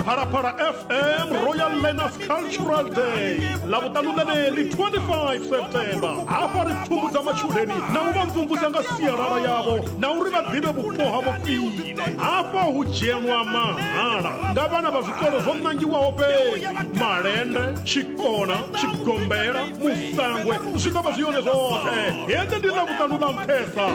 phalaphala fm royal learners cultural day lavhuṱanu ḽeneḽi 25 septemba hafha ri pfumbudza matshudeni na u vha mvumvusa nga sialala yavho na uri vha ḓivhe vhupo ha vhofhile hafha hu dzhenwa mahala nga vhana vha zwikolo zwo ṋangiwaho fhedzi malende tshikona tshigombela musangwe zwi ḓo vha zwi yone zwoṱhe hende ndi ḽavhuṱanu ḽa nṱhesa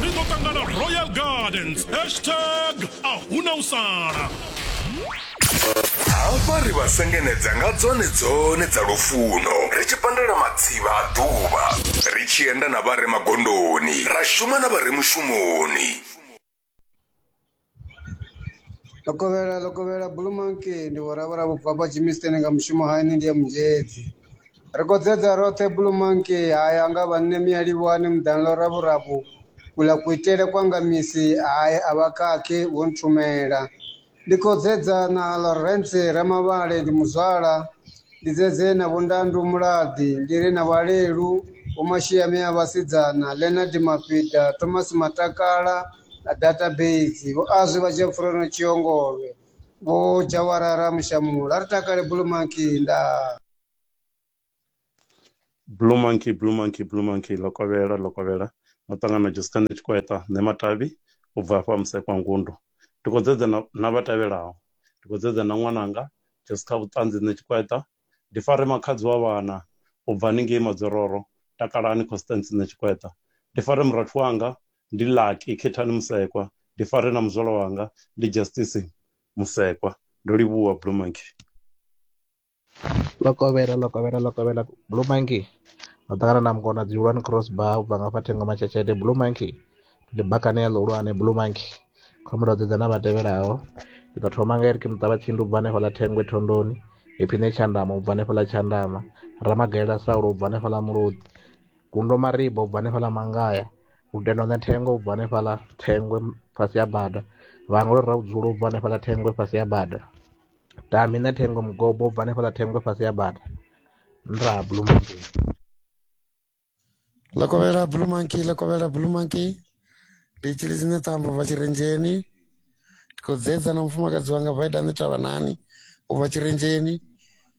ri ḓo ṱangana royal gardens hashtag a huna u sala hafha ri vha sengenedza nga dzone dzone dza lufuno ri tshi pandela matsivha a ḓuvha ri tshi enda na vha re magondoni ra shuma na vha re mushumoni lokovhela lokovhela bulumanki ndi vhoravhura vhubvabwa jimisteni nga mushumo haini ndi ya munzhedzi Ri khou dzedza roṱhe Blue Monkey hae a nga vha nṋe Miyalivhuwani muḓani ḽo raburabu kula kuitele kwa nga misi hae a vha khakhi vho nthumela ndi khou dzedza na Lawrence Ramavhale ndi muzwala ndi dzedze na vho Ndandu Mulaḓi ndi ri na Vhalelu vho Mashiami a vhasidzana Leonard Mafhida Thomas Matakala na database vho azwi vha dzhia pfurono Tshiongolwe Vho Jawara Ramushamu ra ri takale Blue Monkey nda. Blue Monkey Blue Monkey Blue Monkey Lokovhela Lokovhela muṱangano Josephine Tshikweta nṋe Matavhi u bva hafha Musekwa Ngundo ndi khou dzedza na, na vha tevhelaho ndi khou dzedza na ṅwananga Jessica Vhuṱanzi nṋe Tshikweta ndi fare makhadzi wa vhana u bva haningei Madzororo takalani Constance nṋe Tshikweta ndi fare murathu wanga ndi Lucky Khethani Musekwa, ndi fare na muzwala wanga ndi Justice Musekwa. Ndo livhuwa Blue Monkey. Lokovhela, Lokovhela, Lokovhela, Blue Monkey. Ndo ṱangana na mukona dzihulwane cross bar u bva nga fha thengo matshetsheṱe Blue Monkey. Ndi bakane ya ḽihulwane Blue Monkey. Khombo ndo dzedza na vha tevhelaho. Ndi ḓo thoma nga Eric Muṱavha Tshindu u bva hanefha ḽa Thengwe Thondoni, Ephine Tshandama u bva hanefha ḽa Tshandama, Ramagalela Saulo u bva hanefha ḽa Mulodi, Gundo Maribo u bva hanefha ḽa Mangaya, u tenda u ṋea thengo u bva hanefhaḽa thengwe fhasi ya bada vhaṅwe vha ri ra vhudzulo u bva hanefhaḽa thengwe fhasi ya bada tami ṋea thengo mugobo u bva hanefhaḽa thengwe fhasi ya bada nṱha ha blue mountain ḽa kovhela blue monkey ḽa kovhela blue monkey ndi tshili dzine ṱambo bva tshirenzheni ndi khou dzedza na mufumakadzi wanga vaida ni tavha nani u bva tshirenzheni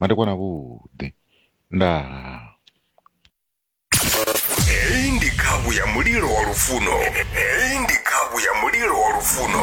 madekwana vhuḓi ndaa heyi ndi khavhu ya mulilo wa lufuno heyi ndi khavhu ya mulilo wa lufuno